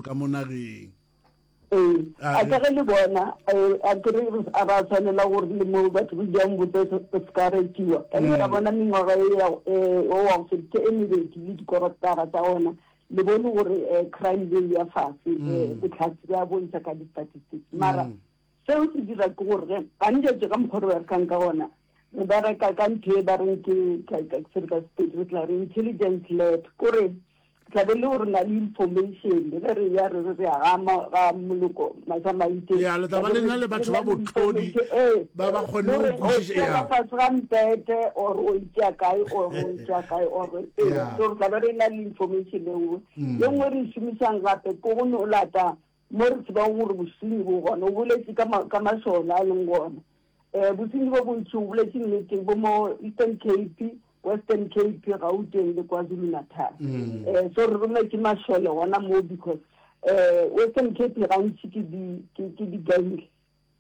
ka mo nageng. Ee, a ka ge le bona, a kere a ba tshwanela gore le mo batho go jang botse se ka retiwa. Ka ke ka bona mengwaga e ya o wa go feditse e mebedi le dikorotara tsa ona le bone gore crime rate ya fatshe botlhatsi ba bontšha ka di-statistics mara seo se dira ke gore ge gantši ka mokgwa o re berekang ka ona re bereka ka ntho e ba reng ke re tla re intelligence lab kore tlabe le gore na le information ge re ya re re re aga ga moloko masamaite ya le taba le na le batho ba botlodi eh, ba ba kgone go kwišiša ya fa ga mpete or o itša kae or o itša kae or eh, so re tlabe re na le information e nngwe mm. le nngwe re šomišang gape ko go no lata Mo re tsebago gore bosenyi bo gona, o boletše ka, ka mašole a leng gona. Um, bosenyi bo bontši, o boletše nnete, bo mo Eastern Cape, Western Cape, Gauteng le KwaZulu-Natal. Um, so re rongwe ke mašole gona mo because um Western Cape gantši ke di, ke, ke di-gang,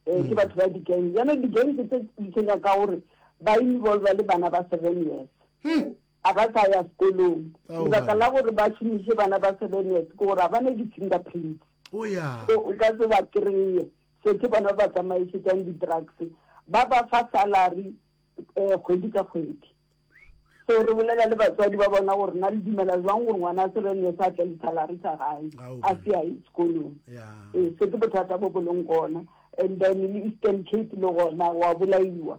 um ke batho ba di-gang. Bjale di-gang tse di tshwenya ka gore ba involva le bana ba seven years. A ba sa ya sekolong. Lebaka la gore ba šomiše bana ba Sebenete ke gore a ba ne di-fingerprints. O ya. So o ka se ba kry-e. So ke bona ba tsamaišetšang di-drugs. Ba ba fa salary um kgwedi ka kgwedi. So re bolela le batswadi ba bona gore na le dumela jwang gore ngwana a Sebenete sa tle le salary sa gae a se a ye sekolong. Ee, se ke bothata bo bo leng gona. And then le Eastern Cape le gona wa bolaiwa.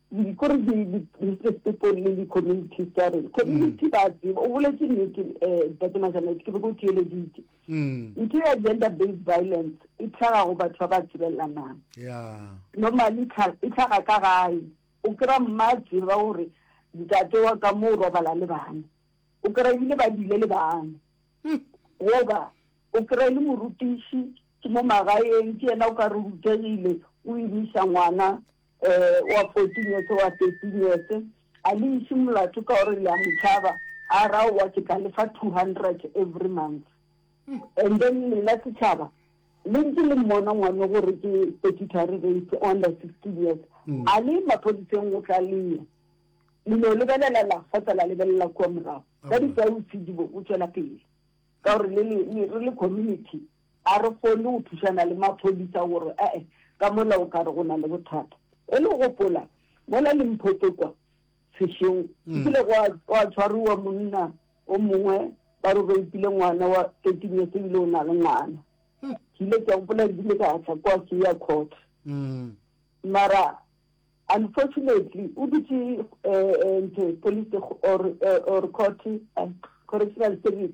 Ko re di-business people le di-community stareng community ba tseba o boletse nnete um tate majanete ke be ko theeleditse ntho ya gender based violence e tlhaga go batho ba ba tsebelelanang normally e tlhaga ka gae o kry-a mma a tseba gore ntate wa ka mo o robala le bana o kry-a ebile ba dile le bana goba o kry-a le morutiši ke mo magaeng ke yena o ka re rutegile o emisa ngwana wa fourteen years, wa thirteen years, a le iše molato ka gore le a mo tšhaba, a re aowa ke tla le fa two hundred every month. And then lena setšhaba le ntse le mmona ngwane gore ke statutory rape o under sixteen years, a le maphodiseng go tla leya le no lebelela la fa tsa la lebelela kua morago ka ditausidi bo o tšwela pele ka gore le le re le community A re kgone go thušana le maphodisa gore a e ka mola o ka re go na le bothata. Go le gopola, mola Limpopo kwa, sešeng, go kile gwa, gwa tshwariwa monna o mongwe, ba re o reipile ngwana wa thirteen years, ebile o na le ngwana. Ke ile ke a gopola ke ile ka tla kwa ke ya court. Mara unfortunately o dutše um, ntho, police or, or court, correctional service.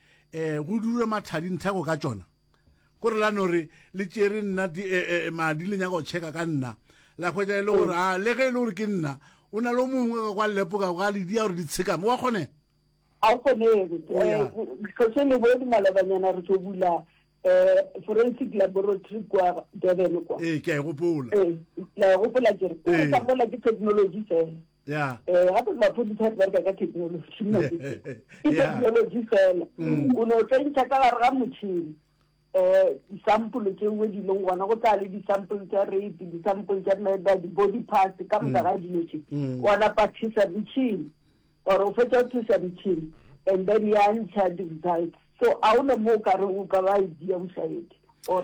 um go dure mathadi nthako ka tšona gore la no re le tšere nna madi le nyaka go checka ka nna la hwetša e le gore a le ge e le gore ke nna o na le mongwe ka kwa lepoka ga le dia gore di tshekame wa kgone a o kgonege tlhoše le bone malobanyana re tlo bula um forensic laboratory kwa durban kwa ee ke a e gopola la e gopola kere ke sa bola ke technology fela Yeah. Eh, gape maphodisa a bereka ka technology nna ke ke Yeah. technology fela Mm. o ne o tla ntsha ka gare ga motšhini um disampole tsewe di leng gona go tla le disampole tsa rape disampole tsa meda di-body parts ka moka ga dilo tse Mm. wa napa thusa metšhini or o fetsa go thusa metšhini and then ya ntsha di-results so a o ne mo o ka re o ka ba idea o sa ete or